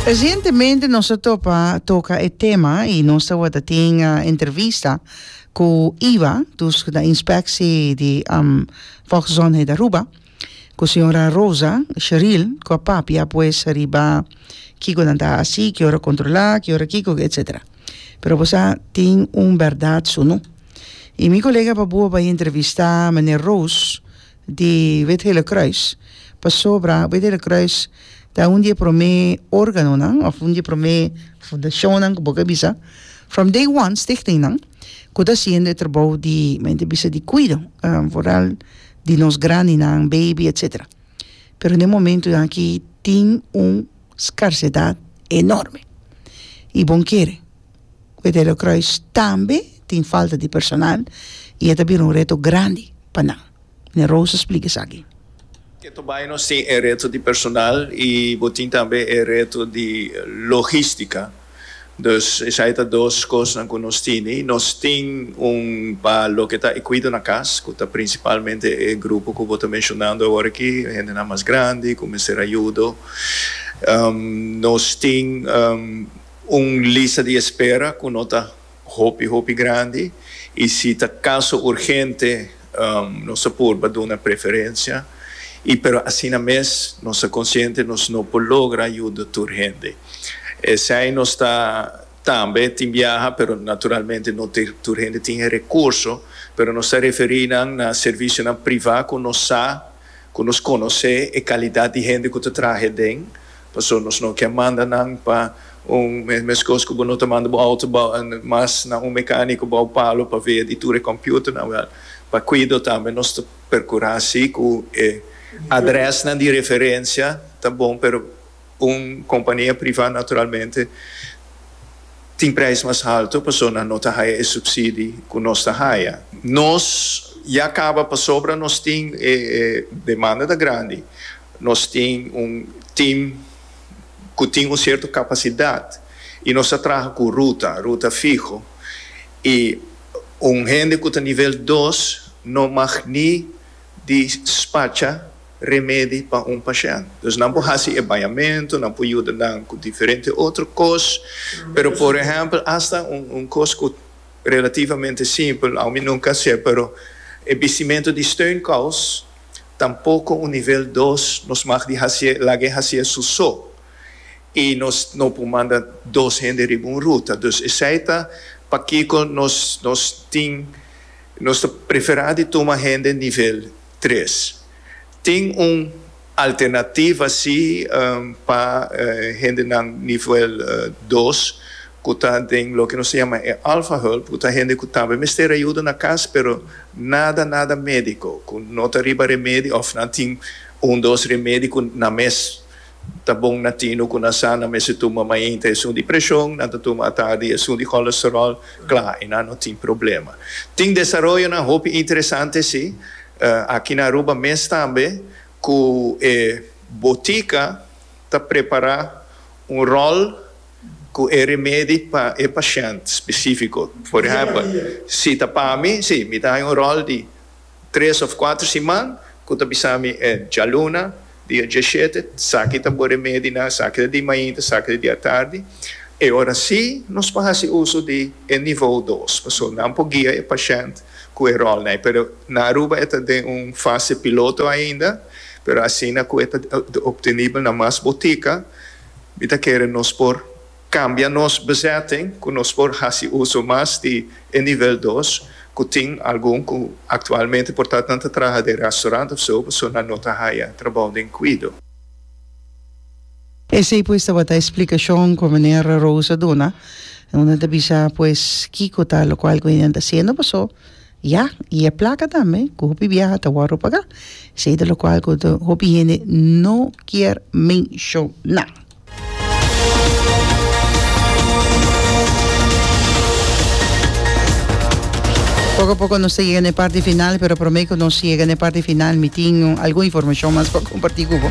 Recientemente nos a topa toca e tema y nos tawata tin entrevista cu iva, dus cu ta inspectie di um, Volksgezondheid Aruba, cu señora Rosa Sheril cu a papia pues riba kico nan ta haci, ki ora controla, ki ora kico etcetera. Pero bo sa tin un berdad su no. Y mi colega paboa bay entrevista meneer Roos. di Wit Hele Kruis pasobra Wit Hele Kruis ta un di e promé organonan of un di e promé fundashonnan ku bo ke bisa from day one stichting nan ku ta hasiendo e trabou di me ta bisa di kuido vooral di nos grandinan baby etsetera pero den e momento aki tin un skarsedat enorme i bon kere Betelio Croes tambe tin falta di personal y e ta bira un reto grandi pa nan. Meneer Roos a splica esaki. Keto bay nos tin e reto di personal y bo tin tambe e reto di logistica. Dus esaki ta dos cosnan cu nos tin y nos tin un pa loke ta e cuido na cas cu ta principalmente e grupo cu bo ta mencionando awor aki, hendenan mas grandi cu mester ayudo. Nos tin. Un lista di espera ku no ta hopi hopi grandi i si ta kaso urgente nos ta purba duna preferensia i pero asina mes nos ta konsiente nos no por logra yuda tur hende. Esei nos ta tambe tin biaha pero naturalmente no tur hende tin e rekurso pero nos ta referí nan na servisionan privá ku nos sa ku nos konosé e kalidat di hende ku ta traha aden. Paso nos no ke manda nan pa un meskos ku bo no ta manda bo outo bou en mas na un mekaniko bou palo pa vea di tur e komputernan wel. Pa kuido tambe nos ta perkura si ku e adrèsnan di referensia ta bon pero un kompania privá naturalmente tin preis mas halto paso nan no ta haya e supsidi ku nos ta haya. Nos ya kaba pasobra nos tin e demanda ta grandi Nos tin un team cu tin un cierto capacidad y nos ta traha cu ruta, ruta fiho, y un hende cu ta nivel dos no mag ni dispacha remedi pa un pashent. Dus nan por haci e bañamento, nan por yuda nan cu diferente otro cos, pero por ehempel hasta un cos cu relativamente simpel, aun mi nunca a hacer, pero e bistimento di steunkous, Tampoco un nivel dos nos mag di hacié laga e hacié su so y nos no por manda dos hende riba un ruta. Dus esey ta pakico nos nos tin nos ta prefera di tuma hende nivel tres. Tin un alternativa si pa hendenan nivel dos cu ta den loke nos ta yama e alfa hulp cu ta hende cu tambe mester ayuda na cas pero Nada nada medico cu no ta riba remedi of nan tin un dos remedi cu nan mes ta bon na tino cu nan sa nan mester tuma mainta esun di presion nan ta tuma atardi esun di cholesterol cla y nan no tin problema. Tin desaroyonan hopi interesante si aki na Aruba mes tambe cu e botica ta prepara un rol cu e remedi pa e pashent specifico. Por ehempel, si ta pa mi, si, mi ta haña un rol di tres of cuater siman cu ta bisa mi e djaluna, dia diashete, saki ta bo remedi nan, saki ta di mainta, saki ta di atardi, e ora si nos por haci uso di e nivou dos, pasobra nan por guia e pashent cu e rolnan ai. Pero na Aruba e ta den un fase piloto ainda, pero asina cu e ta obtenibel na mas botica, Mi ta kere nos por kambia nos bezetting ku nos por hasi uso mas di e nivel dos ku tin algun ku aktualmente por ta nan ta traha den restaurant òf so pasobra nan no ta haya trabou den kuido. Esei pues tabata e splikashon ku Meneer Roos a duna, unda nan ta bisa pues kiko ta lokual ku e nan ta hasiendo paso. Ya, y e placa tambe cu hopi biaha ta wordo paga, esey ta locual cu hopi hende no kier menciona. Poco a poco nos ta yega na e parti final, pero prome cu nos yega na e parti final mi tin algun informacion mas pa comparti cu bo.